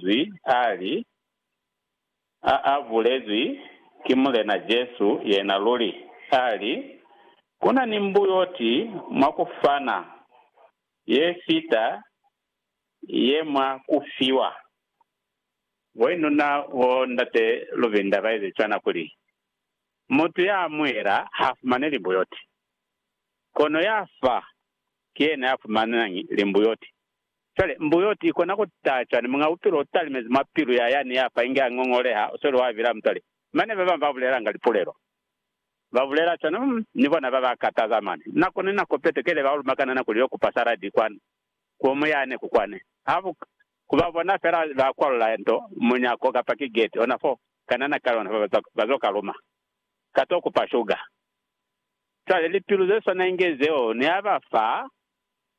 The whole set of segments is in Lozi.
Linzwi ali, A a bulezwi ki Mulena Jesu yena luli. Ali, Ku na ni mbuyoti mwa ku fana ye fita ye mwa ku fiwa. Boinuna bo Ndate Luvinda ba ezi cwana kuli, Mutu ya amuhela ha fumani limbuyoti, kono ya fa ki yena ya fumanañi limbuyoti. Cwale, mbuyoti, ikona ku taha cwani Muñ'a Bupilo u talimezi mwa pilu ya yani ya fa inge a ngongoleha, u sweli wa bila, mutoli? Mane ba bañwi ba bulelanga lipulelo. Ba bulela cwani, Umm, ni bona ba ba kataza mane. Nako ni nako Petro ki ile ba lumakanana kuli yo kupa saladi kwani, ku mu yani, ku kwani. Ha bu ka. Ku ba bona fela ba kwalula nto, munyako, kapa ki geti, ona fo, ka nana ka yona, ba, ba zo ka luma. Ka to kupa shuga. Cwale, lipilu ze swana inge zeo, ni ha ba fa,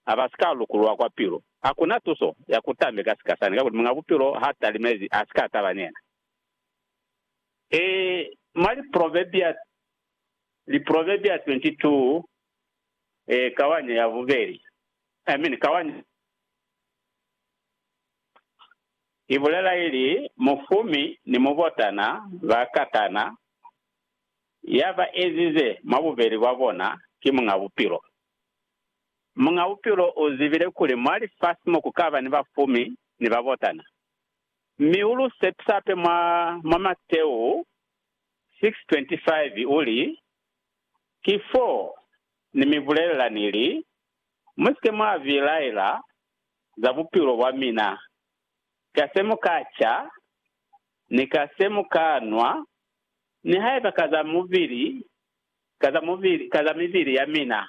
ha ba si ka lukulwa kwa pilu. Ha ku na tuso ya ku tambe ka sika sani, kakuli Muñ'a Bupilo h'a talimezi, a si ka taba ni yena. Ee, mwa Liproverbia, Liproverbia 22, ee, kawanya ya bubeli. Amen. Kawanya i bulela ili, Mufumi ni mubotana ba katana, ya ba ezize mwa bubeli bwa bona ki Muñ'a Bupilo. Muñ'a Bupilo u zibile kuli mwa lifasi mo ku ka ba ni bafumi ni babotana, mi u lu sepisa hape mwa, mwa Mateu 6:25, u li, Ki fo Ni mi bulelela ni li, Mu si ke mwa bilaela za bupilo bwa mina, ka se mu ka ca, ni ka se mu ka nwa, nihaiba ka za mubili ka za mubili, ka za mibili ya mina,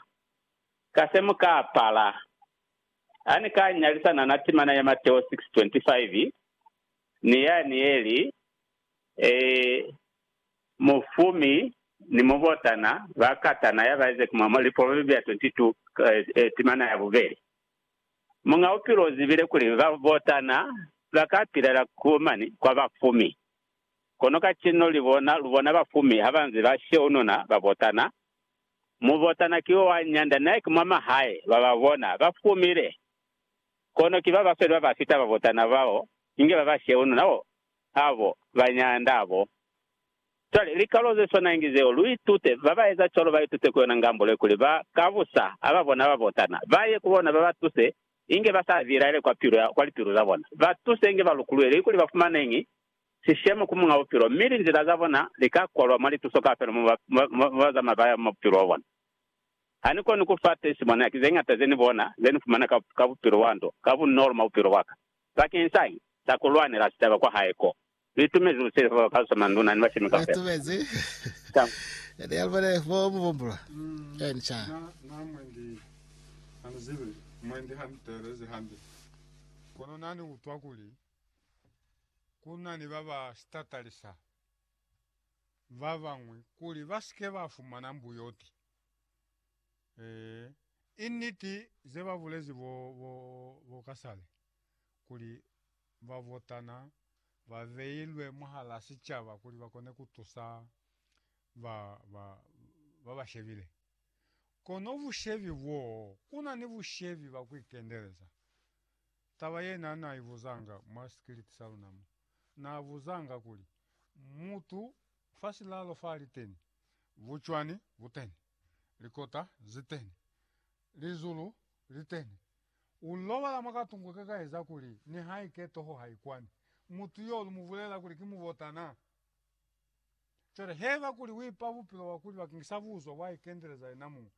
ka se mu ka apala. Ha ni ka nyalisana na timana ya Mateo 6:25 ni yani ye li, Ee, mufumi ni mubotana ba katana ya ba eze ku mwa, Liproverbia 22, timana ya bubeli. Muñ'a Bupilo u zibile kuli babotana ba ka pilela ku mani kwa bafumi. Kono kacenu libona, lubona bafumi habanze ba sheununa babotana. Mubotana ki wa nyanda naye ki mwa mahae, bababona bafumile. Kono ki babasweli babafita babotana bao, inge baba sheununa bo abo ba nyanda bo. Cwale, likalo zeswana inge zeo, luitute, babaeza cwalo baitute ku yona ngambule kuli ba ka busa hababona babotana, baye ku bona babatuse inge basa bilaele kwa lipilu zabona, batuse inge balukuluele, ikuli bafumane ñi sishemo ku Muñ'a Bupilo, mi linzila za bona li ka kolwa mwa lituso kaufela mo ba zamaya ba ya mwa bupilo bwa bona. Ha ni koni ku fa tesimoniaki ze ñata ze ni bona ze ni fumana ka bupilo bwa nto ka bunolo mwa bupilo bwa ka. Bakeñi sa ki sa ku lwanela sicaba kwa hae ko, ni itumezi ku silifa ba kalusa manduna ni bashemi kaufela. Ku na ni ba ba si tatalisa ba bañwi kuli ba si ke ba fumana mbuyoti. Ee, i niti ze ba bulezi bo, bo, bo kasale, kuli babotana ba beilwe mwahal'a sicaba kuli ba kone ku tusa ba, ba, ba ba shebile. Kono bushebi boo, ku na ni bushebi ba ku ikendeleza. Taba ye n'a na i buzanga mwa sikiliti sa luna mo n'a buzanga kuli, Mutu fa silalo fa li teni, bucwani bu teni, likota zi teni, lizulu li teni. U lobala mwa katungu ke ka eza kuli nihaike toho ha i kwani. Mutu y'o lu mu bulela kuli ki mubotana. Cwale haiba kuli uipa bupilo bwa kuli bakeng sa buzo bwa ikendeleza yena muñwi,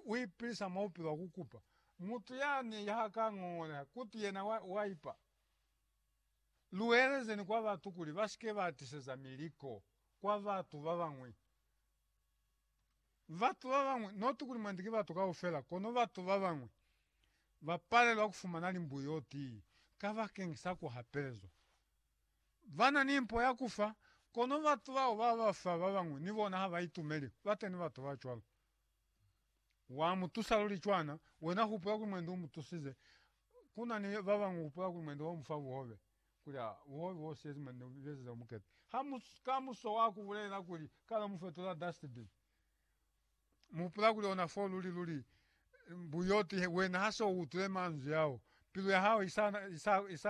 uipilisa mwa bupilo bwa kukupa, mutu yani ha ka ngongoleha kuti yena waipa, luelezeni kwa batu kuli basike ba tiseza miliko kwa batu babañwi. Batu babañwi, not kuli mwandi ki batu kaufela, kono batu babañwi bapalelwa kufumana limbuyo tii kabakeng sa kuhapelezwa. bana ni mpo ya ku fa, kono batu bao ba ba fa ba bañwi ni bona ha ba itumeli ku ba teñi batu ba cwalo. Wa mu tusa luli cwana wena hupula kuli mwendi u mu tusize, ku na ni ba bañwi hupula kuli mwendi wa mu fa buhobe, kuli, Aa, buhobe bo siyezi mwendi u besize bukete. Ha mu kamuso wa ku bulela kuli, Ka lo mu fetula dustbin, mu hupula kuli ona fo luli luli buyoti, wena ha se u utwile manzwi ao, pilu ya hao i sa, i sa, i sa